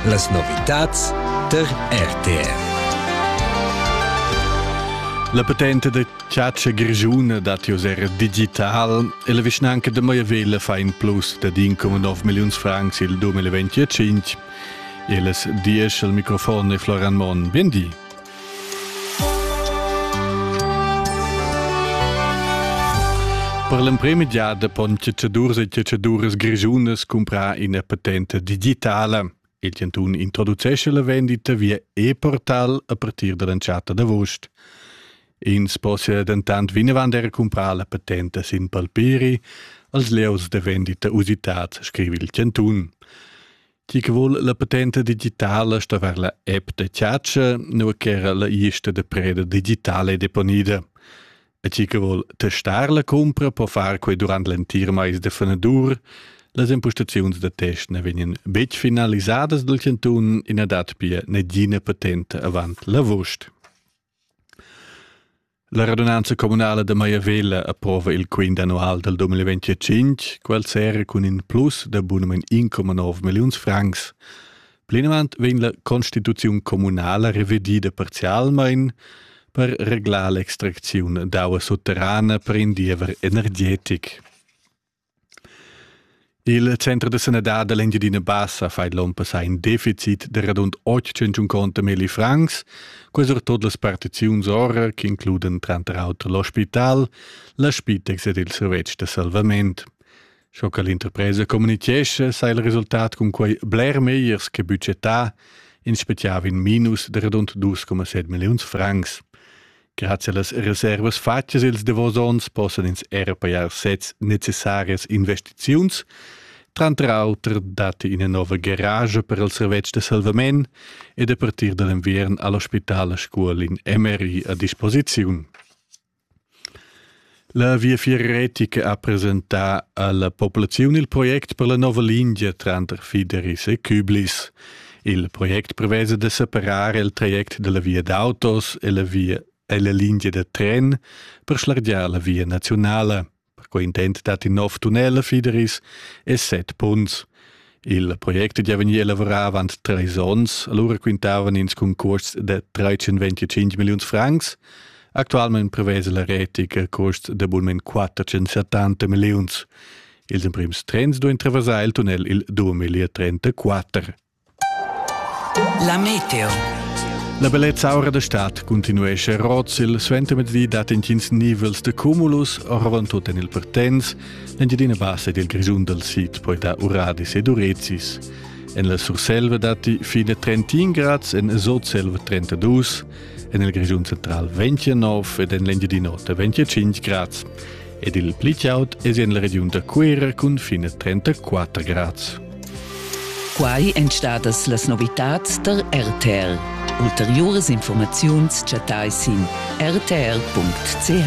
Las novitads tar RTR. La patente da chatscha grischuna dat jos era digital e la vischnanca da Maiavella fa in plus da 1,9 milliuns francs il 2025. Elas diesch al microfon e Floran Mon. Bien di. Per l'emprema giada pon ceceduras e ceceduras grischunas cumprar ina patenta digitala. Il chantun introducesce la vendita via e-portal a partir dall'entschatta d'avost. Ins possia dentant vinavant era cumprar la patenta sin palpiri als lieus da vendita usitads, scrive il chantun. Chi che vuol la patenta digitala sta ver la app da chatscha, nu ch'era la ista da preda digitale deponida. E chi che vuol testar la cumpra po far quei durant l'entir mais de fenadur. Las impostaziuns da test ne vegnan betg finalisadas dal cantun e na dat pia negina patenta avant l'avust. La radunanza communala da Maiavella approva il quint annual dal 2025, quel serra cun in plus da bunamain 1,9 milliuns francs. Plinavant vegn la constituziun communala revedida parzialmain per reglar l'extracziun d'aua sutterrana per in diever energetic. Il center da sanadad da l'Engiadina Bassa fa l'onn passà in deficit da radund 800 conta milli francs, quels er tot las partiziuns ora che includan tranter auter l'ospital, la Spitex ed il servetsch da salvament. Sco che l'interpresa communichescha, sa il resultat cun quei bler megliers che budgetà, in special in minus de radund 2,7 milliuns francs. Grazie allas reservas fatgas ils davos onns possan ins era pajar sezs necessarias investiziuns. Tranter auter datti ina nova garage per il servetsch da salvament ed a partir da l'enviern ha l'ospital a Scuol in MRI a disposiziun. La Viafier retica ha presentà alla populaziun il project per la nova lingia tranter Fideris e Küblis. Il project prevesa da separar il traject dalla via d'autos e la via e la lingia da tren per schlargiar la via nazionala. Per quei intent dat in nov tunnel a Fideris e set punts. Il project è già vegnì elavorà avant trais onns, allura quintavan ins cun custs da 325 milliuns francs. Actualmain prevesa la retic a custs d'abunament 470 milliuns. Ils emprims trens duain traversar il tunnel il 2034. La meteo. La bellezza aura da stad continuesce a Rotzil. Suentermezdi dat intgins nivels de cumulus, oravant tut en il Pertens. L'Engiadina Bassa ed il Grischun dal sid poita Uradis ed Urezis. En la Surselva datti fine 31 grads, en Sotselva 32, en il Grischun central 29 ed en l'Engiadin'Ota 25 grads. Ed il pli chaud è en la regiun da Cuera cun fine 34 grads. Quai èn stadas las novitads tar RTL. Ulteriuras informaziuns chattai sin rtl.ch.